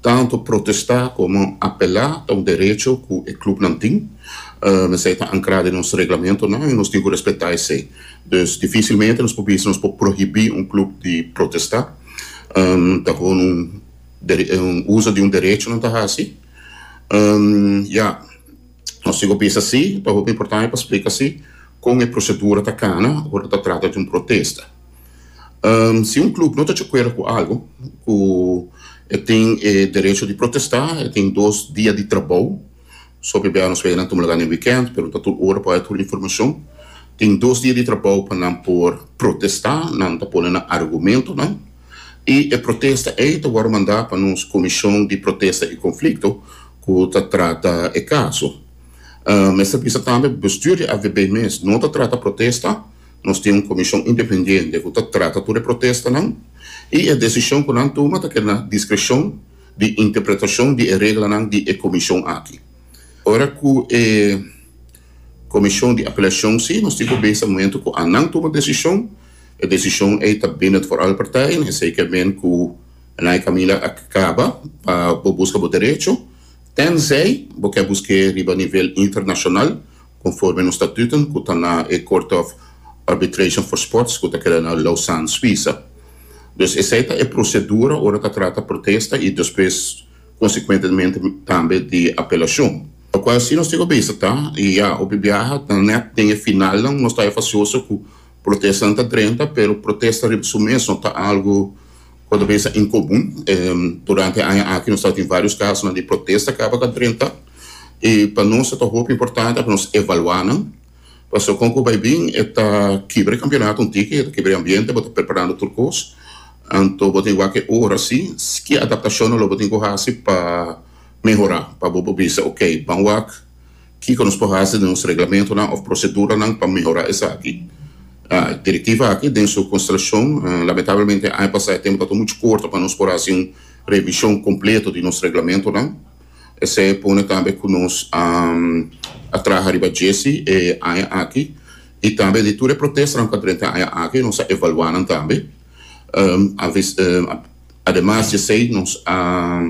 Tantu protestá komo apelá ta un derecho ku e klubnan tin. Esei ta ankrá den nos reglamentonan i nos tin ku respetá esei. Dus difísilmente nos por bisa nos por prohibí un klub di protestá. Ta gewoon un un uso di un derecho nan ta hasi. Ya, nos tin ku bisa sí. Ta hopi importante pa splika sí kon e prosedura ta kana ora ta trata di un protesta. Si un klub no ta djakuerdo ku algu ku e tin e derecho di protestá, e tin dos dia di trabou, so p'e nos wei nan tuma lugá den wikènt, pregunta tur ora pa hoi tur informashon, tin dos dia di trabou pa nan por protestá, nan ta pone nan argumentonan i e protesta ei ta wòrdu mandá pa nos komishon di protesta i konflikto ku ta trata e kaso. Mester bisa tambe, bestuur di avb mes no ta trata protesta, Nos tin un komishon independiente ku ta trata tur e protestanan i e desishon ku nan tuma ta keda na diskreshon di interpretashon di e reglanan di e komishon aki. Ora ku e komishon di apelashon si nos tin ku bisa mumentu ku a nan tuma desishon, e desishon ei ta bindend for alle partijen, esei ke men ku nan e kaminda a kaba pa bo buska bo derecho, tènzei bo ke busk'é riba nivel internashonal conforme nos statuten cu ta na e Court of Arbitration for Sports cu ta keda na Lausanne, Suiza. Dus esey ta e procedura ora ta trata protesta y despues consecuentemente tambe di apelacion. Locual si nos tin cu bisa ta, y ya, hopi biaha ta net den e finalnan, nos ta efacioso cu protestanan ta drenta pero protesta riba su mes no ta algo Konta mesa en komun. Durante e aña aki nos tabata tin vários kasonan di protesta kaba ka drenta i pa nos tabata hopi importante pa nos evaluá nan pasobra kon ku bai bin e ta kibra e kampionato un tiki, e ta kibra e ambiente, bo ta preparando tur kos anto bo tin wak e ora si ke adaptashonnan lo bo tin ku hasi pa mehorá pa bo por bisa, okey, ban wak Kiko nos por hasi den nos reglamentonan òf proseduranan pa mehorá esaki? Direktiva aki den su konstrashon, lamentablemente aña pasá e tempu tabata muchu korto pa nos por hasi un revishon kompleto di nos reglamentonan. Esei pone tambe ku nos a traha riba djesi e aña aki i tambe di tur e protestanan pa drenta aña aki nos a evaluá nan tambe. Ademas di esei nos a.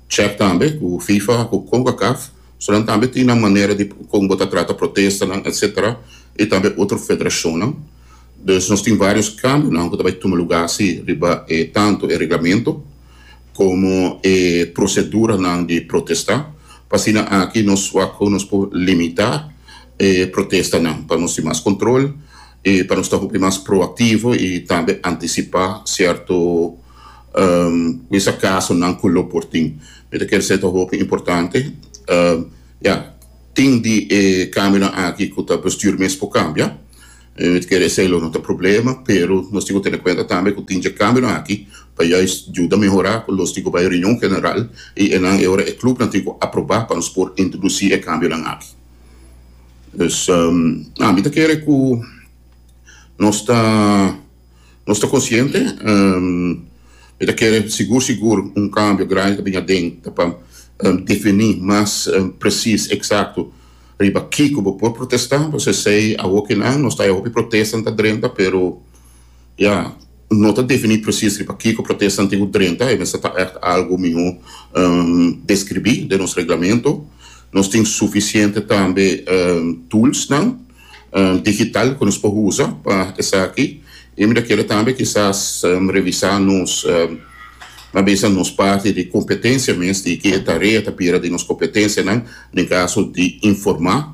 Check tambe cu Fifa cu Concacaf so nan tambe tin nan manera di con bo ta trata protestanan etc. Y tambe otro federacionnan. Dus nos tin varios cambionan cu ta bay tuma lugar asi riba e tanto e reglamento como e proceduranan di protesta pa asina aki nos wak con nos por limita e protestanan pa nos tin mas control. E pa nos ta hopi mas proactivo y tambe anticipa cierto cuinsa casonan cu lo por tin. Mi ta kere sey ta hopi importante. Ya, tin di e cambionan aki cu ta bestuur mes por cambia. Mi ta kere esey lo no ta problema, pero nos tin cu tene cuenta tambe cu tin dje cambionan aki pa juist juda mehora cu los tin cu bay reunion general y enan e ora e clubnan tin cu aproba pa nos por introduci e cambionan aki. Pues ami ta kere ku nos ta nos ta konsiente, mi ta kere sigur sigur un kambio grandi ta bini aden ta pa defini mas presis eksakto riba kiko bo por protesta, pues esei awokinan nos ta e hopi protesta nan ta drenta pero Ya, no ta definí presis riba kiko protesta antigu drenta, e mester ta ègt algu mihó deskribí den nos reglamentu. Nos tin sufisiente tambe tulsnan digital ku nos por usa pa esaki. I mira kila tambe kisas revisá nos na bisa nos parti di kompetensia mes di ki e tarea ta bira di nos kompetensianan den kaso di informá.